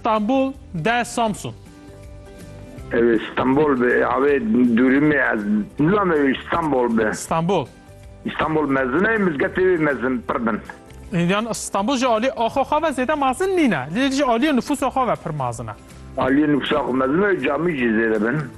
Stenbol de Samsun. Ew ê Stenbol be. Avê dûrîmê ez nizam ew ê Stenbol be. Stenbol. Stenbol mezin e, mizgetê wê mezin pir bin. Yan Stenbol ji aliyê axo xwe ve zêde mezin nîne. Lê ji aliyê nifûsa xwe ve pir mezin e. Aliyê nifûsa xwe mezin e, camî jî zêde bin.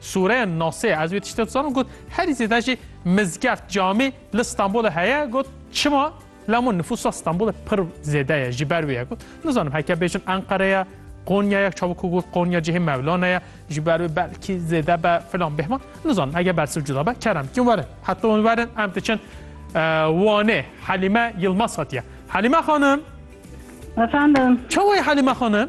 Sûren Nasê ez wê tiştê dizanim got herî zêde jî mizgeft camî li Stenbolê heye got çima lemo nifûsa Stenbolê pir zêde ye ji ber wê ye got nizanim heke bêjin Enqere ye Konya ye çavok ku got Konya cihê Mevlana ye ji ber wê belkî zêde be filan bêhman nizanim heke bersiv cuda be kerem kim werin heta hûn werin em diçin Wanê Helîme Yilmaz hatiye Helîme xanim Efendim. Çawayê Helîme xanim?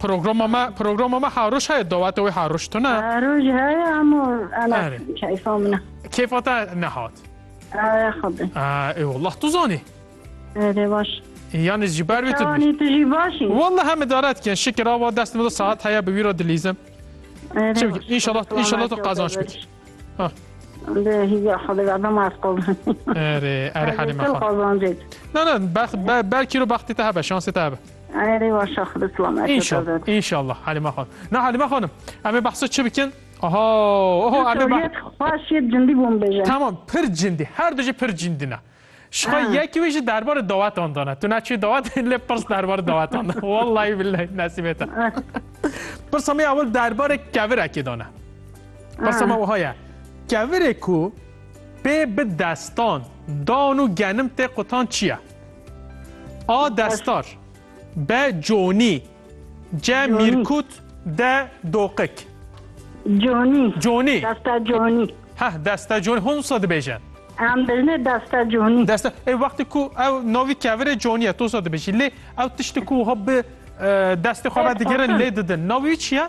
Programa me programa me haroş heye dawete wê haroş tune. Roj heye ama ana Are. keyfa min. Kêfa te nehat. Ara xwedin. Ee, ê wallah tu zanî. Rê baş. Yanî ji ber wê tu dibîst. Şewanî tu jî başî. Wallah em idaret kirin. Şikir ava dest min de saet heye bi wî re dilîzim. Rê Çi baş. bikî? İnşallah- Kulağına inşallah tu kâr kazanç bikî. deriş. belkî ro baxtê te hebe şansê te hebe İnşallah Halime Hanım. Na Halime Hanım em ê behsa çi bikin? Aha oho em ê xweş cindî bûm bêje. Tamam pir cindî her du jî pir cindî ne. Şixwe yekî wî jî derbarê dawetan de ne. Tu neçûyî dawetê lê pirs derbarê dawetan de. Wellahî billehî nesîbê te. Pirsa me ewil derbarê kevirekê de ne. Pirsa me wiha ye. Kevirê ku pê bi destan dan û genim tê qutan çi ye? A. Destar. Be conî. Ce mîrkût de doqik. Conî. Conî. Desta conî. Heh desta conî. Hûn wisa dibêjin? Em bijne desta conî. Desta ê wextê ku ew navî kevirê conî ye tu wisa dibêjî. Lê ew tiştê ku wiha bi destê xwe ve digirin lê didin. Navê wî çi ye?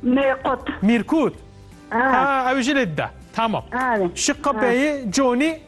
Mîrkût. Mîrkût. Ha ew jî lê dide. Tamam. Şiqabeyê conî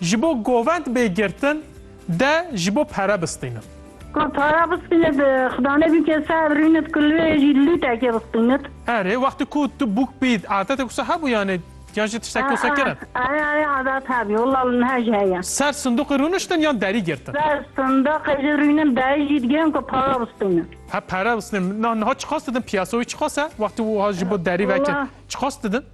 Ji bo govend bê girtin de ji bo pere bistînin. Ku pere bistînit xidane bîke se birînit ku lê jî lûtekê bistînit. Erê wextê ku tu bûk bîyît adetek wisa hebû yanê yan jî tiştek wisa kirin? Erê erê adet hebî wila li niha jî heye. Ser sindoqê rûniştin yan derî girtin? Ser sindoqê jî rûnin derî jî digirin ku pere bistînin. He pere bistînin niha çiqas didin piyasa wî çiqas e wextê wiha ji bo derî veke çiqas didin?